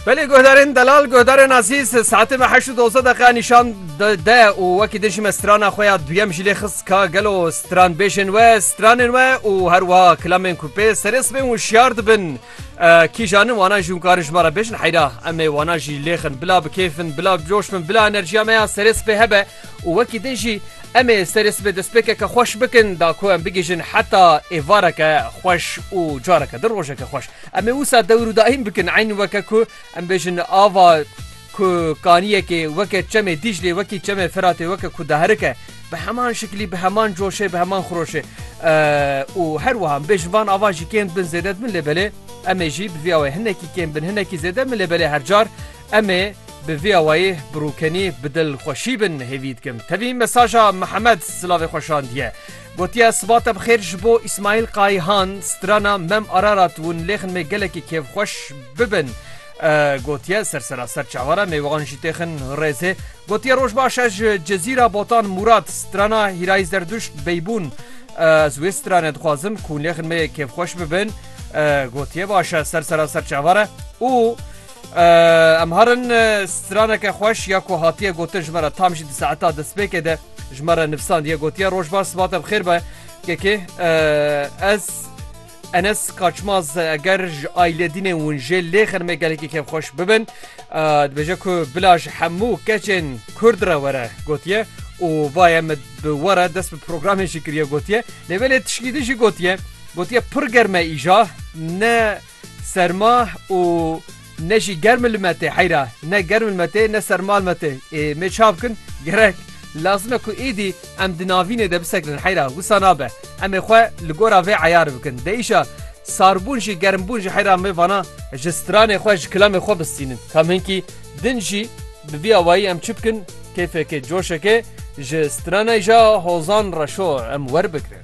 Belê guhdarên delal guhdarên azîz saetê me heşt û doze deqa nîşan de û wekî dijî me strana xwe ya duyem jî lê xist ka gelo stranbêjên we stranên we û her wiha kilemên ku pê serê sibên wişyar dibin kîjanin wanan jî hûn karin ji me re bêjin heyra em ê wanan jî lêxin bila bi kêfin bila coş bin bila enerjiya me ya serê sibê hebe Û wekî din jî em ê serê sibê destpêkeke xweş bikin da ku em bigihîjin heta êvareke xweş û careke din rojeke xweş. Em ê wisa dewr û daîm bikin eyn weke ku em bêjin ava ku kaniyekê weke çemê Dîclê wekî çemê Firatê weke ku diherike bi heman şiklî bi heman coşê bi heman xiroşê û her wiha em bêjin van ava jî kêm dibin zêde dibin lê belê em ê jî bi vî awayê hinekî kêm bin hinekî zêde bin lê belê her car Em ê bi vî awayî bi rûkenî bi dil xweşî bin hêvî dikim. Tevî mesaja Mihemed silavê xwe şandiye. Gotiye sibate bi xêr ji bo Îsmaîl Qayîhan, strana Mem Ararat û nilêxin me gelekî kêfxweş bibin. Gotiye ser seraser çavara me wan jî têxin rêzê. Gotiye roj baş ez ji Cezîra Botan Mûrad, strana Hîrayî Zerduşt Beybûn ez wê strane dixwazim ku nilêxin me kêfxweş bibin. Gotiye baş e ser seraser çavara û Em harin straneke xweş ya ku hatiye gotin ji me re tam jî di saeta destpêkê de ji me re nivsandiye gotiye rojbar sibatem xêr be kekê ez Enes Kaçmaz eger ji ailêdînê hûn jê lê xirmê gelekî kevxweş bibin dibêje ku bila ji hemû keçên Kurd re were gotiye û vaye min bi were dest bi programê jî kiriye gotiye lê belê tişkî din jî gotiye gotiye pir germe îja ne Serma û ne jî germ li me tê heyra. Ne germ li me tê ne serma li me tê. Ê mê ça bikin? Gerek lazim e ku êdî em di navînê de bisekinin heyra. Wisa nabe. Em ê xwe li gora vê eyar bikin. Dê îşa sarbûn jî germbûn jî heyra mê vana ji stranê xwe ji kilemê xwe bistînin. Kam hinkî din jî bi vî awayî em çi bikin kêfekê coşekê ji stranê ja hozan reşo em werbigirin.